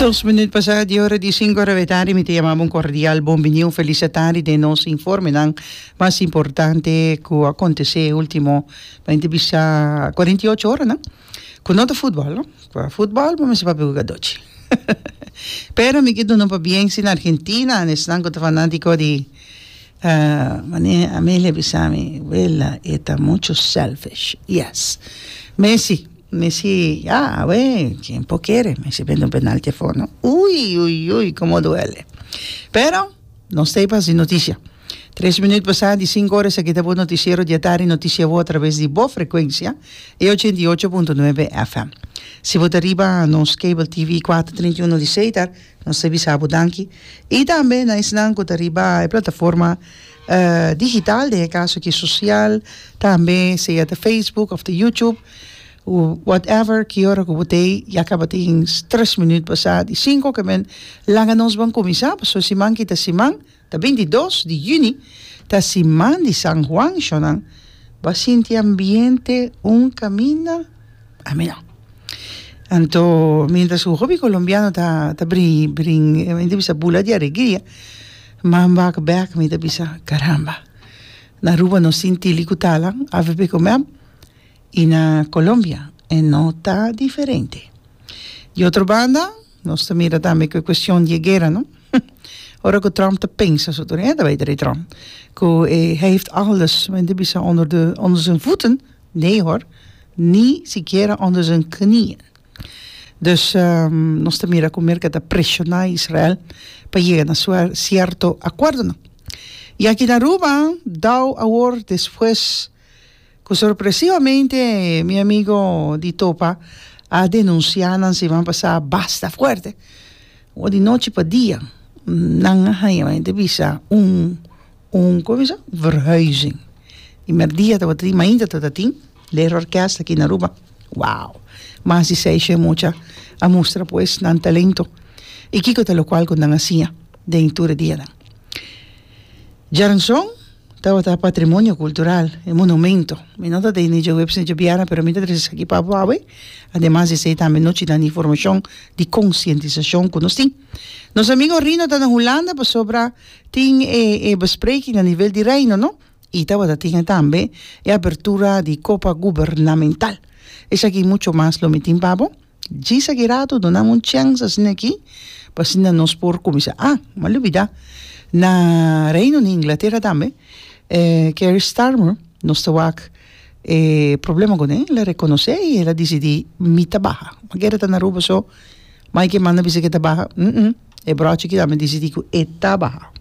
Dos minüt pasá di ora di sinku ora avetadi. Mi ta yama bo un kordial bon bini, un felis atadi den nos informenan mas importante ku a kontesé e último, mi ta bisa kuarenta i ocho oranan, ku no ta futbòl, no. Ku a futbòl bo mester papia ku gadochi. Pero mi ke duna un pabién si na Argentina na esnan ku ta fanátiko di wanié Amelia a bisa mi, Wela, e ta muchu sèlfish. Yes. Messi. Messi, Ya, awe, ken por kere? Messi bende un penalti afor, no? Ui, ui, ui, komo duele. Pero, nos ta e pas di noticia. Tres minut pasá di sinku ora esaki ta bo noticiero diatardi noticia bo a traves di bo frecuencia, e ochenta i ocho punto nuebe FM. Si bo ta riba nos cable TV kuater treinta i uno di Seitar, nos ta bisa bo danki. I tambe na esnan ku ta riba e plataforma digital, den e kaso aki sosial, tambe sea ta Facebook òf ta YouTube, Cu whatever ki ora cu bo ta ey ya cabatin tres minuut pa sa di cinco oca men laga nos ban cuminsa pasobra siman ki ta siman ta bintidos di juni ta siman di san Juan sho nan ba sinti ambiente un caminda a mi no anto mientras cu hopi colombiano ta ta brin brin mi ta bisa bula di alegria man back back mi ta bisa caramba na Aruba nos tin tili cu talan avp cu me I na Colombia e no ta diferente. Di otro banda, nos ta mira tambe ku e kuestion di e guera, no? Ora ku Trump ta pensa su tur, e ta bai ta di Trump, ku e hij heeft alles, men ta bisa, onder de, onder zijn voeten, nee hoor, ni sikiera onder zijn knieën. Dus, nos ta mira ku Merka ta preshona Israel pa yega na suer, sierto akuerdonan. I aki na Aruba, Dow awor despues. Cu sorpresivamente mi amigo di Topa a denuncia nan siman pasa basta fuerte o di nochi pa dia nan a haya mi ta bisa un un como bisa un verhuizing primer dia tabata tin mainta tabata tin Lero orkest aki na Aruba wow mas di seis shen mucha a mustra pues nan talento y kico ta locual cu nan a hacía den tur e dianan. Jaranson tabata patrimonio cultural, e monumento. Mi no ta den ni djoweps ni djobiarna, pero mi ta trece esaki pa bo awe. Ademas di esey tambe no china ni formacion di concientisacion cu nos tin. Nos amigo Rino ta na Hulanda pasobra tin e e bespreking na nivel di Reino, no? Y tabata tin tambe e apertura di copa gubernamental. Esaki y mucho mas lo mi tin pa bo. Djis aki rato dunanme un chèns asina aki pa asina nos por kuminsá a m'a lubidá na reino di inglatera tambe e kerry starmer nos ta wak e problema kuné el a rekonosé i el a disidí mi ta baha mi keda ta na aruba so mai ke manda bisa ke ta baha e brochi aki tambe disidí ku e ta baha